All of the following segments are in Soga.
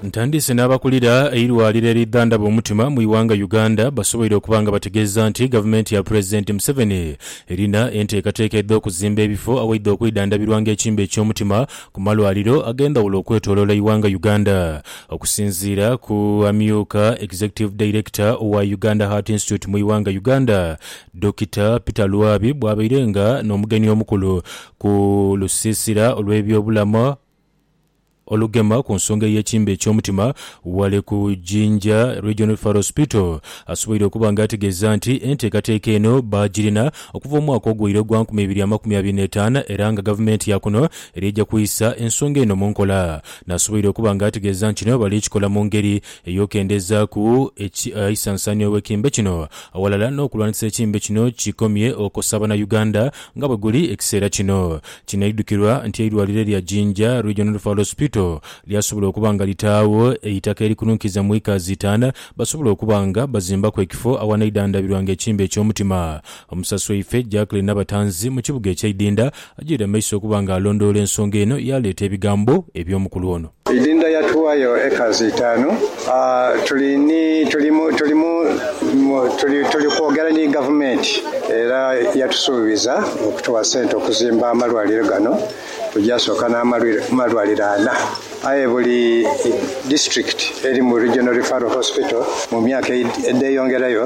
Ntandise n'abakulira eirwaliro eridhandhaba omutima mu ighanga Uganda basoboire okuba nga bategeeza nti gavumenti ya Pulezidenti Museveni erina enteekateeka edh'okuzimba ebifo awaidha okwidhandhabirwanga ekimbe eky'omutima ku malwaliro ag'endhawulo okwetoloola eighanga Uganda. Okusinziira ku amyuka Executive Director owa Uganda Heart Institute mu ighanga Uganda, Dokita Peter Lwabi bwabaire nga n'omugenyi omukulu Ku lusiisira olw'ebyobulamu olugema ku nsonga ey'ekimbe eky'omutima ghale ku Jinja Regional Referral Hospital, asoboire okuba nga ategeeza nti enteekateeka eno baagirina okuva omwaka ogwaire ogwa nkumi ibiri amakumi abiri n'etaano era nga Gavumenti ya kuno eri eja kwisa ensonga eno mu nkola. Nasoboire okuba nga ategeeza nti kino bali kikola mu ngeri ey'okendezaaku eisansaanhio gh'ekimbe kino aghalala n'okulwanisa ekimbe kino kikomye okosa Bannayuganda Nga bwe guli ekiseera kino, kinaidhukirwa nti eirwaliro erya Jinja Regional Referral Hospital lyasobola okuba nga litaagho eitaka erikununkiza mu acres itaanu basobole okuba nga bazimbaku ekifo awanaidhandhabirwanga ekimbe eky'omutima. Omusasi waife Jackline Nabatanzi mu kibuga ekye Idinda ajoire amaiso okuba nga alondoola ensonga eno yaaleeta ebigambo eby'omukulu ono. Idinda ya tuwayo acres itanu tuli ni tuli mu tuli mu tuli tuli kwogera ni gavumenti era yatusuubiza okutuwa sente okuzimba amalwaliro gano. Tuja soka na malwaliro ana aye buli district erimu regional referral hospital mu myaka edheyongerayo.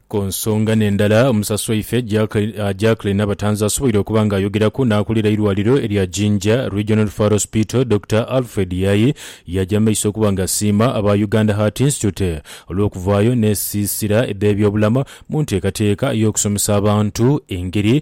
Ku nsonga n'endala omusasi waife Jacklin Nabatanzi asoboire okuba nga ayogeraku n'akulira eirwaliro erya Jinja Regional Referral Hospital Dokita Alfred Yayi yaaja mu maiso okuba nga asiima aba Uganda Heart Institute olw'okuvaayo n'esiisira edh'ebyobulamu mu nteekateeka ey'okusomesa abantu engeri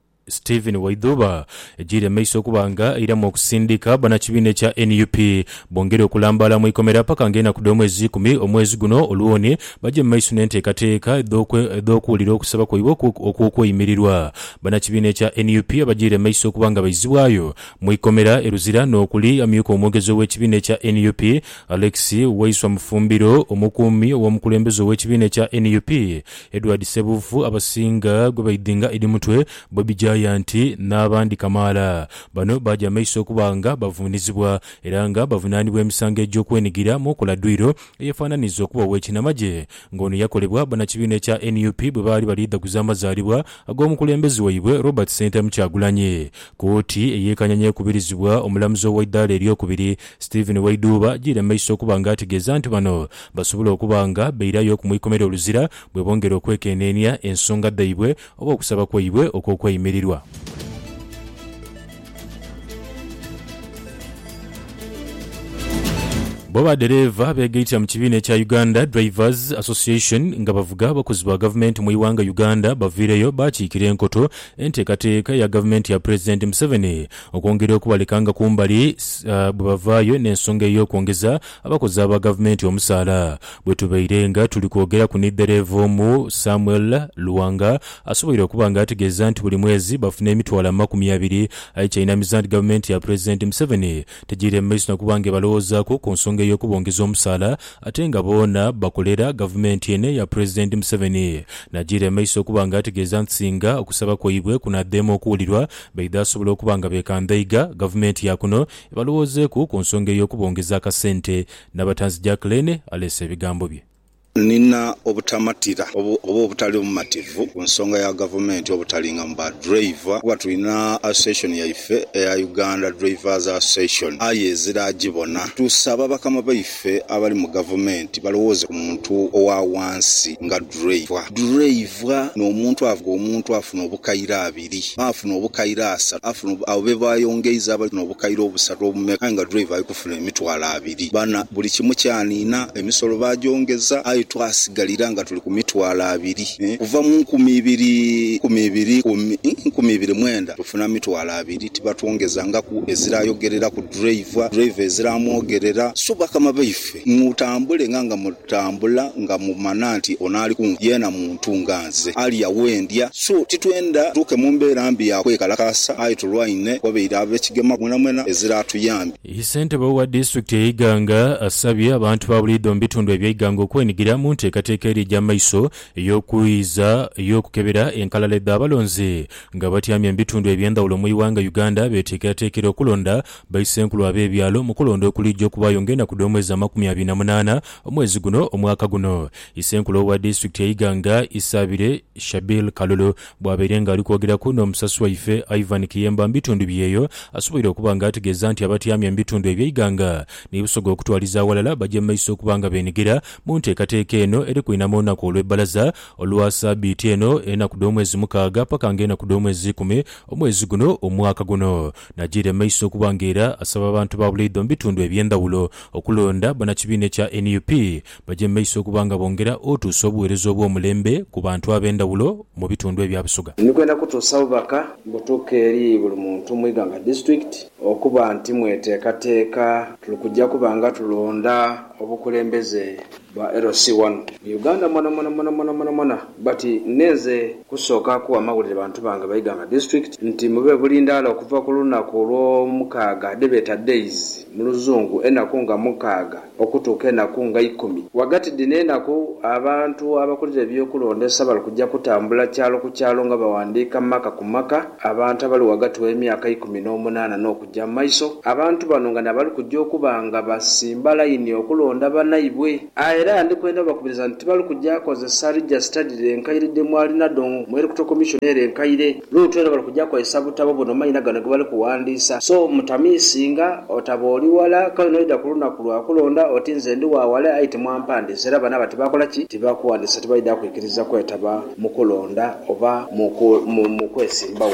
Stephen Waidhuba ejiire mu maiso okuba nga eiramu okusindika banakibiina ekya nup bongere okulambaala mu ikomera paka nga enaku dh'omwezi ikumi omwezi guno olwoni baje mu maiso n'enteekateeka edh'okuwulira okusaba kwaibwe okw'okweyimirirwa. Banakibiina ekya nup abajiire mu maiso okuba nga baizibwayo mu ikomera e Luzira n'okuli amyuka omwogezi ow'ekibiina ekya nup Alex Waiswa Mufumbiro, omukuumi ow'omukulembeze ow'ekibiina ekya nup Edward Ssebuufu abasinga gwe baidhinga edi mutwe, Bobi Giant n'abandi kamaala. Bano baaja maiso okuba nga bavuunizibwa era nga bavunaanibwa emisango egy'okwenigira mu okola dwiiro eyefananiza okuba ow'ekinamagye nga ono yakolebwa banakibiina ekya nup bwe baali bali dhaguza amazaalibwa ag'omukulembeze waibwe Robert Ssentamu Kyagulanyi. Kooti ey'e Kanyanya ekubirizibwa omulamuzi ow'eidhaala ery'okubiri, Stephen Waidhuuba ajiire mu maiso okuba nga ategeeza nti bano basobola okuba nga bairayo ku mu ikomera oluzira bwebongera okwekeneenia ensonga dhaibwe oba okusaba kwaibwe okw'okweyimirirwa. Bo ba dereeva begaitira mu kibiina ekya Uganda Drivers Association nga bavuga abakozi ba gavumenti mu ighanga Uganda baviireyo bakiikira enkoto enteekateeka eya gavumenti ya pulezidenti Museveni Okwongera okubalekanga kumbali bwe bavaayo n'ensonga ey'okwongeza abakozi aba Gavumenti omusaala. Bwe tubaire nga tuli kwogeraku ni dhereeva omu, Samuel Luwanga, asoboire okuba nga ategeeza nti buli mwezi bafuna emitwalo amakumi abiri aye ky'ainamiza nti Gavumenti ya Pulezidenti Museveni tegiire mu maiso na kuba nga ebalowoozaku ku nsonga ey'okubongeza omusaala ate nga boona bakolera Gavumenti eno eya Pulezidenti Museveni. Nagiire mu maiso okuba nga ategeeza nti singa okusaba kwaibwe kunaadheemu okuwulirwa, Baidha asobola okuba nga beekandhaiga gavumenti ya kuno ebalowoozeeku ku nsonga ey'okubongeza akasente. Nabatanzi Jacqueline aleese ebigambo bye. Nina obutamatira oba obutali bumativu ku nsonga ya gavumenti obutalingamu ba driver kuba tulina association yaife eya Uganda Drivers Association aye ezira agibona. Tusaba bakama baife abali mu gavumenti balowooze ku muntu owa wansi nga driver. Driver n'omuntu avuga omuntu afuna obukairabi. ibiri. Baafuna obukaire asatu. Baafuna abo be baayongeiza abali n'obukaire obusatu obumeka, aye nga driver ali kufuna emitwalo abiri. Bana, buli kimu kyaniina, emisolo baagyongeza, aye twasigalira nga tuli ku mitwalo abiri. Kuva mu nkumi ibiri nkumi ibiri ku nkumi ibiri mwenda tufuna mitwalo abiri, tibatwongezangaku. Eziraayogerera ku driver, driver eziraamwogerera, Su bakama baife, mutambule nga nga Tambula nga mu mana nti ono ali kunze yeena muntu nga nze, alya we ndya, so titwenda tutuuke mu mbeera mbi ya kwekalakaasa aye tulwaine wabaire ab'ekigema mwenamwena ezira atuyambye. Ye Ssentebe wa disitulikiti ye Iganga asabye abantu ba buliidho mu bitundu ebye Iganga okwenhigira mu nteekateeka eri eja maiso ey'okwiiza ey'okukebera enkalala edha balonzi nga abatyamye mu bitundu eby'endhawulo mu ighanga Uganda beteekerateekera okulonda baisenkulu ab'ebyalo mu kulonda okuliija okubaayo ng'enaku dh'omwezi amakumi abiri na munaana omwezi guno omwaka guno. Isenkulu owa disitulikiti e Iganga, Isabire Shabil Kalulu bwabaire nga ali kwogeraku n'omusasi waife Ivan Kiyemba mu bitundu bye eyo, asoboire okuba nga ategeeza nti abatyamya mu bitundu ebye Iganga ni Busoga okutwaliza aghalala bagye mu maiso okuba nga beenhigira mu nteekateeka eno eri kwinama olunaku olw'ebbalaza Olwa sabiiti eno, enaku dh'omwezi mukaaga paka nga enaku dh'omwezi ikumi omwezi guno omwaka guno. Najiira emaiso okuba nga era asaba abantu ba bulaidho mu bitundu eby'endhawulo okulonda banakibiina ekya nup baje mu maiso okuba nga bongera otuusa obuweereza obw'omulembe ku bantu ab'endhawulo mu bitundu ebya Busoga. Ni kwenda kutuusa bubaka butuuke eri buli muntu mu Iganga District okuba nti mweteekateeka tuli kuja kuba nga tulonda obukulembeze Ba LC wano mu Uganda mwanamwanamwanamwanamwanamwana but neenze kusooka kuwa mawulire bantu bange Baiganga District nti mube bulindaala okuva ku lunaku olw'omukaaga dhebeeta days mu luzungu enaku nga mukaaga okutuuka enaku nga ikumi ghagati dhino enaku abantu abakulira eby'okulondesa bali kuja kutambula kyalo ku kyalo nga bawandiika maka ku maka abantu abali ghagati w'emyaka ikumi n'omunaana n'oku gya mu maiso, abantu bano nga n'abali kuja okuba nga basimba laini okulonda banaibwe. A Era ndi kwenda obakubiriza nti tibali kuja kozesa Register dhire enkaire dhe mwali nadho mu Electoral Commission ere enkaire. Luutu era bali kuja kozesa butabo buno maina gano ge bali kuwandiisa. So mutamiisinga, otaba oli wala, kale n'oidha ku lunaku lwa kulonda oti nze ndi wa wala aye timwampandiisa era bano aba tibakola ki? Tibakuwandiisa tibaidha kwikiriza kwetaba mu kulonda oba mu kwesimbawo.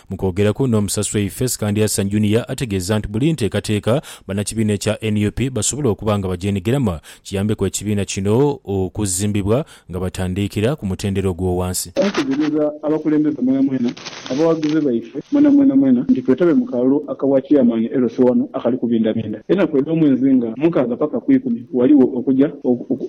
Mu kwogeraku n'Omusaswe Yves Kandyasan Junior ategeeza nti buli nteekateeka bannakibiina ekya nup basobola okuba nga bagyenigiramu kiyambeku ekibiina kino okuzimbibwa nga batandiikira ku mutendera ogw'owansi. Twategeeza abakulembeze mwenamwena, abawagizi baife mwena mwena mwena nti twetabe mu kalulu aka bwa Chairman e Lwesewano akali kubindabinda enaku edh'omwezi nga mukaaga paka ku ikumi, ghaligho okuja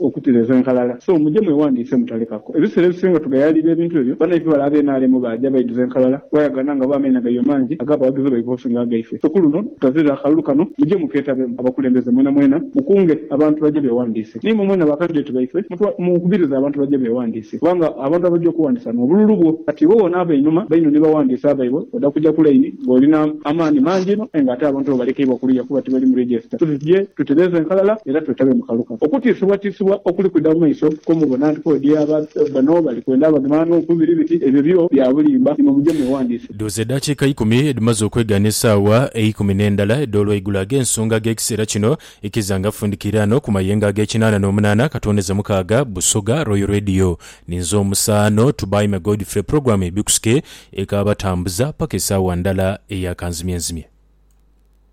okutereza enkalala so muje mwewandiise mutalekaku. Ebiseera ebisinga tugayaalirira ebintu ebyo. Banaife bale aba NRM baaja baidhuza enkalala bwayagana nga bo amaina gaibwe mangi ag'abawagizi baibwe okusinga agaife. So ku luno tutazirira akalulu kano, muje mukeetabemu. Abakulembeze mwenamwena mukunge abantu baje beewandiise. Ni imwe mwena bakaddideti baife, mukubirize abantu baje beewandiise. Kubanga abantu abaja okuwandiisa nuwo bululu bwo. Kati iwe woona ava einhuma, baino ni bawandiisi abaibwe, oda kuja ku laini ng'oli n'amaani mangi inho aye ng'ate abantu bo balekeibwa kuluya kuba tibali mu register. So tuje tutereeze enkalala era twetabe mu kalulu kano. Okutiisibwatiisibwa okuli kwidha mu maiso kwo mubona nti kodi aba bano bali kwenda abagema n'oku biri biti, ebyo byo bya bulimba, imwe muje mweghandiise. Dhooza edaakiika eikumi edhimaze okwegaana esaawa eikumi n'endala edh'olwaigulo ag'ensonga ag'ekiseera kino ikiza nga fundikiiraano ku mayengo ag'ekinaana n'omunaana akatondeza mukaaga Busoga Royal Radio. Ninze omusaano Tubaime Godfrey pulogulaamu ebikusike ekaabatambuza paka esaawa ndala eya kanzimyenzimye.